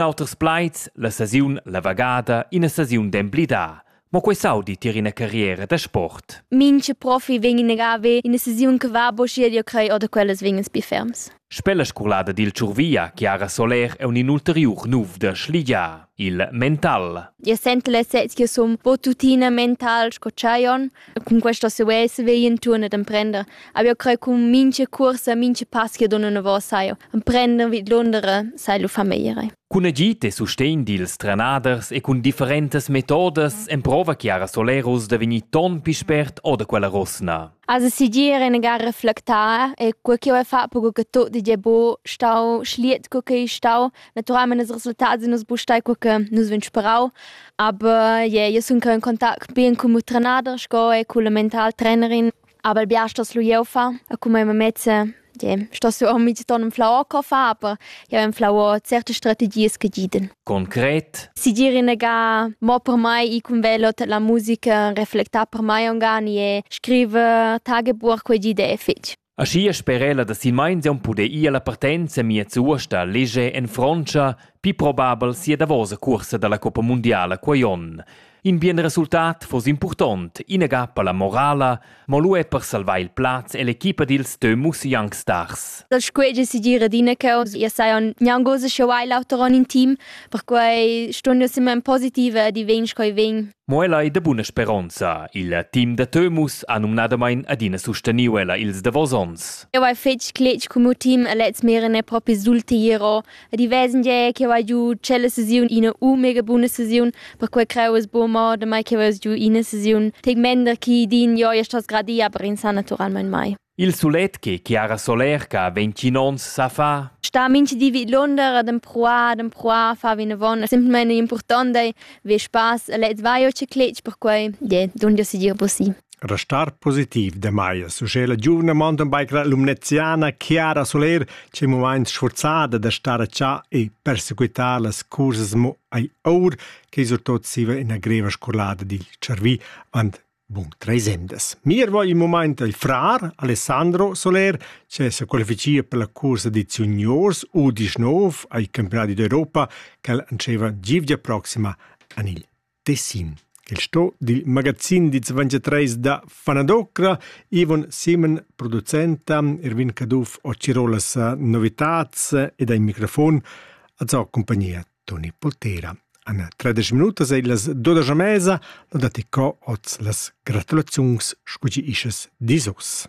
Auters plaids, la sesiun la vagada, ina sesiun d'emblidar. Mo quei saudi tier ina carriera da sport. Minche profi vegn in ravi ina sesiun che va bo schier io crei oder quellas vegnas bi ferms. Spella scolada dil Tschurvia, Chiara Soler è un inulteriur nuf da Schligia, il mental. Io sento l'esserzia som bo tuttina mental sco Chaion, Cun questa sovessa vegli intorno ad emprender. Abbiamo credo con minche corsa, minche pass che donno novo sai. Emprender vid Londra sai lo famiglie. Cun agid e sustegn dils trenaders e cun differentas metodas emprova Chiara Solerus da vegnir ton pi spert o da quella rosna. Also si dir eine gar reflektar e quel che vuoi fare per che tutto è buon stau, schliet quel che è stau, Naturalment ils resultats in nus bustai co che nus vegn sperau, aber yeah, io sun in contact bien cun mio trenader sco e cun la mental trainerin, aber il biars das lu jeu fa e cun mia mamezza yeah, sto su ormi ti ton flau co fa, aber jeu en flau certe strategies che giden. Concret? Si dir inega mo per mai i cun velo la musica reflecta per mai ongani e scrive Tagebuch quei gide e fetg. Aschia sper'ella da silmeins aunc puder ir alla partenza miez uost a leger en Frontscha pli probabel sia davosa cuorsa dalla Coppa mundiala quei onn. In bien resultat foss impurtont, inaga per la morala, mo lu er per salvar il plaz ell'equipa dils Teumus Young Stars. Da scuei decidir adina ch'jeu ia sai gnanc ussa sch'jeu hai l'auter onn in team, perquei stun jeu semma positiva ed i vegn sco i vegn. Mo ella ei da buna speronza. Il team da Tömus ha numnadamain adina susteniu ella ils davos onns. Eu hai fetg cletg cun miu team e lez meren e propi sultiro ed i vesen gie che hai giu tschella sesiun ina u mega buna sesiun perquei creu es buca mo da mai che veus giu ina sesiun tec mender chi din jo ja stas gradia per insan naturalmein mai. Il sulegl chiara solerca vegn tgin onns sa fa. Star mintgdi vidlunder ad empruar, ad empruar, far vinavon. Simpelmain impurtant è vi spass e lez vai o cicletg perquai je dunque segir possibile. Restar positiv demai suge la giuvna mountain biker lumneziana Chiara Soler c'è un moment sforzada da stare a cià e perseguitare las curses mo ai aur che surtot siva ina greva scorlada dil cervi, want Bun treis emdas. Mirva il mumaint al frar Alessandro Soler che sa qualificia per la cursa dits juniors U19 ai campionati d'Europa ch'el antscheva givgia proxima an il Tessin. Il sto dil magazin dits 23 da Fanadocra Ivon Simen, producenta, Erwin Caduff o Cirolas novitats ed ai microfon, a zau compagnia Toni Poltera. An tredisch minutas ei las dodas a mesa, lo dati co oz las gratulaziuns, scugi ischas disos.